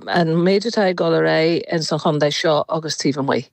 an méid atá ag dul ar aghaidh ins an chontae seo agus taobh amuigh.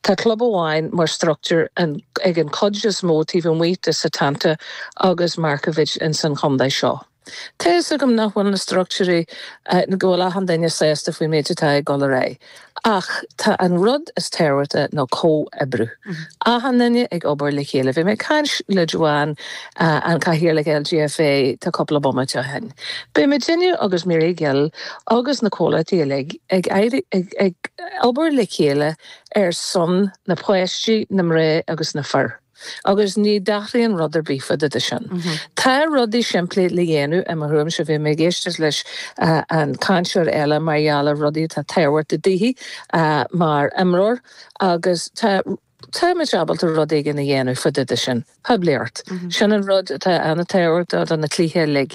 Tá club amháin mar structúr ag an cuid is mó taobh amuigh de Setanta agus Markievicz ins an chontae seo. Tá fhios agam nach bhfuil na structúirí, go bhfuil achan duine sásta faoin mhéid atá ag dul ar aghaidh ach tá an rud is tábhachtaí ná comhoibriú. Achan duine ag obair le chéile. Bhí mé ag caint le Joanne An Cathaoirleach LGFA, cúpla bomaite ó shin. Bíonn muidinne agus Mary Coughlan agus na comhlachtaí uilig ag, ag obair le chéile ar son na páistí, na mná agus na fir. Agus ní athraíonn rud ar bith fá dtaobh de sin. Tá rudaí simplí le dhéanamh, i mo thuairimse. Bhí mé ag éisteacht leis an cainteoir eile mar gheall ar rudaí atá tábhachtach daoithi mar imreoir agus tá. Táimid ábalta rud éigin a dhéanamh fá dtaobh de sin, poiblíocht. Sin an rud atá an-tábhachtach do na cluichí uilig.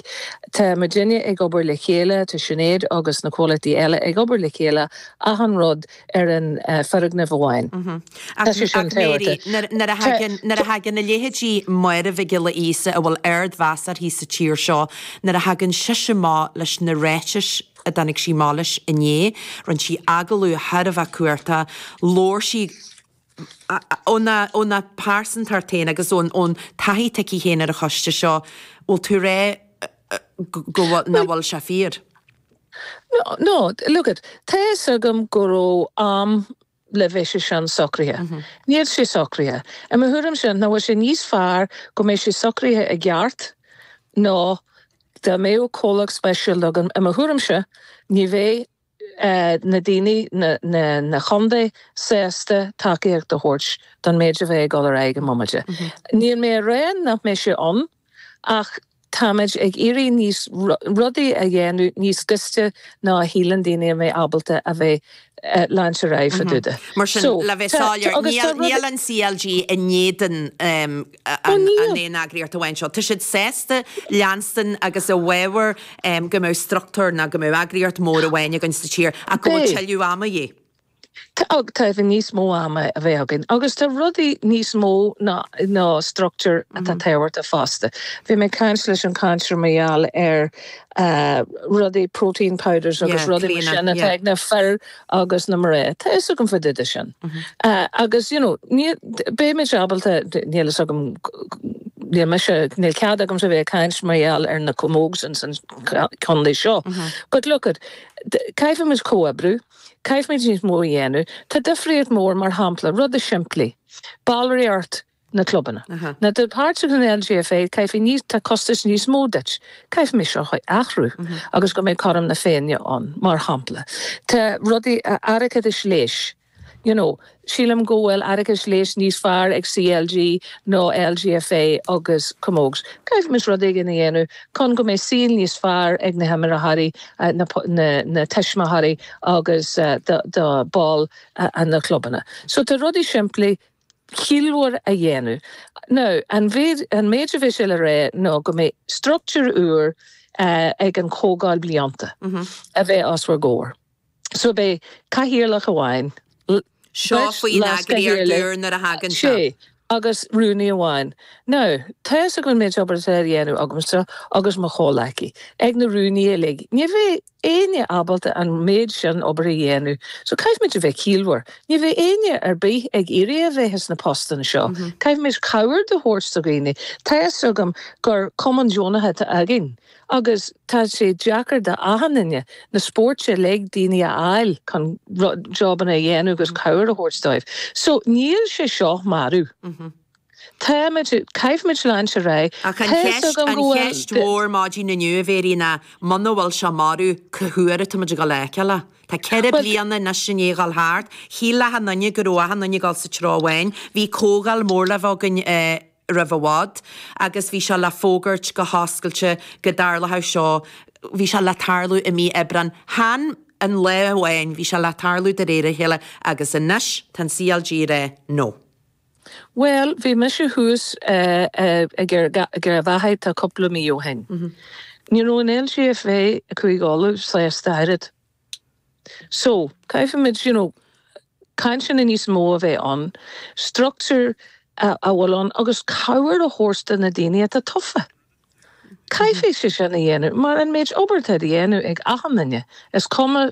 Tá muidinne ag obair le chéile, tá Sinéad agus na comhlachtaí eile ag obair le chéile, achan rud ar an fhoirgneamh amháin. Tá sé sin tábhachtach. Nuair a thagann a leithéidí Máire Mhic Giolla Íosa a bhfuil ardmheas uirthi sa tír seo, nuair a thagann sise amach leis na ráitis a dtáinig sí amach leis inné. Rinne sí agallamh thar a bheith corraithe. Labhair sí óna pearsantacht féin agus ón taithí atá aici féin ar an choiste seo. Bhfuil tú ag rá nach bhfuil sé fíor? Nó, look it, tá fhios agam go raibh am go mbeadh sé sin socraithe. Níl sé socraithe. I mo thuairimse, nach bhfuil sé níos fearr go mbeidh sé socraithe i gceart ná dá mbeadh comhdháil speisialta againn? I mo thuairimse, ní bheadh na daoine, na contaetha sásta tacaíocht a thabhairt don méid a bheidh ag dul ar aghaidh i mbomaite. Níl mé a rá nach mbeidh sé ann. Ach táimid ag iarraidh níos, rudaí a dhéanamh níos gaiste ná shíleann daoine a bheidh ábalta a bheith leanstan ar aghaidh fá dtaobh de. Mar sin, le bheith soiléir, níl an CLG i ndéadan an aon eagraíocht amháin seo. Tá siad sásta leanstan agus i bhfábhar go mbeadh structúr ná go mbeadh eagraíocht mór amháin againn sa tír ach go bhfuil tuilleadh ama de dhíth. Caithfidh níos mó ama a bheith againn agus tá rudaí níos mó ná structúr atá tábhachtach fosta. Bhí mé ag caint leis an cainteoir mar gheall ar rudaí protein powders agus rudaí mar sin atá ag na fir agus na mná. Tá fhios agam fá dtaobh de sin. Agus you know, beidh muid ábalta, níl fhios agam, níl mise, níl cead agamsa bheith ag caint mar gheall ar na camógs ins an condae seo. But look it, caithfimid comhoibreadh. Caithfimid níos mó a dhéanamh. Tá difríocht mhór, mar shampla, rudaí simplí, ballraíocht na clubanna. Má tá tú páirteach san LGFA, caithfidh níos, tá costais níos mó duit. Caithfimid seo a athrú agus go mbeidh cothrom na féinne ann, mar shampla. Tá rudaí a airgeadais leighis, you know. Sílim go bhfuil airgeadais leighis níos fearr ag CLG ná LGFA agus Camogs. Caithfimis rud éigin a dhéanamh chun go mbeidh saol níos fearr ag na himreoirí, na tuismitheoirí agus do ball na clubanna. So tá rudaí simplí, chiallmhar a dhéanamh. Now, an mhéid, an méid a bheidh sé le rá ná go mbeidh struchtúr úr ag an Chomhdháil Blianta a bheidh os bhur gcomhair. So beidh cathaoirleach amháin, Seo beirt faoin eagraíocht leaschathaoirligh, úr nuair a thagann sé, seo. agus rúnaí amháin. Now, tá's agam an méid obair atá á dhéanamh agamsa agus mo chomhleacaí, ag na rúnaí uilig. Ní bheidh éinne ábalta an méid sin obair a dhéanamh. So caithfimid a bheith ciallmhar. Ní bheidh éinne ar bith ag iarraidh a bheith sna postanna seo. Caithfimid cabhair do thabhairt do dhaoine. Tá's agam gur cumann deonaithe atá againn. Agus tá sé deacair d'achan duine, na spóirt uilig, daoine a fháil chun jobanna a dhéanamh agus cabhair a thabhairt dóibh. So níl sé seo marbh. Táimid, caithfimid leanúint ar aghaidh. Ach an cheist, an cheist mhór maidin inniu, dáiríre, ná muna bhfuil seo marbh, cá huair atáimid ag dul a fheiceáil é? Tá ceithre bliana anois i ndiaidh a dhul thart. Shíl achan duine go raibh achan duine ag dul sa treo amháin. Bhí comhdháil mór le bheith againn i. roimh i bhfad agus bhí seo le fógairt go hoscailte go dtarlódh seo, bhí seo le tarlú i mí Aibreáin, chan an lá amháin, bhí seo le tarlú de réir a chéile agus anois tá an CLG ag rá no. Bhuel, bhí mise thuas ag Garbhachadh tá cúpla mí ó shin. Ní raibh an LGFA, Cúige Uladh, sásta ach oiread So, caithfimid, you know, cainteanna níos mó a bheith ann, struchtúr a bhfuil ann agus cabhair a thabhairt do na daoine atá tofa. Caithfidh sé sin a dhéanamh mar an méid obair atá á dhéanamh ag achan duine, is cuma,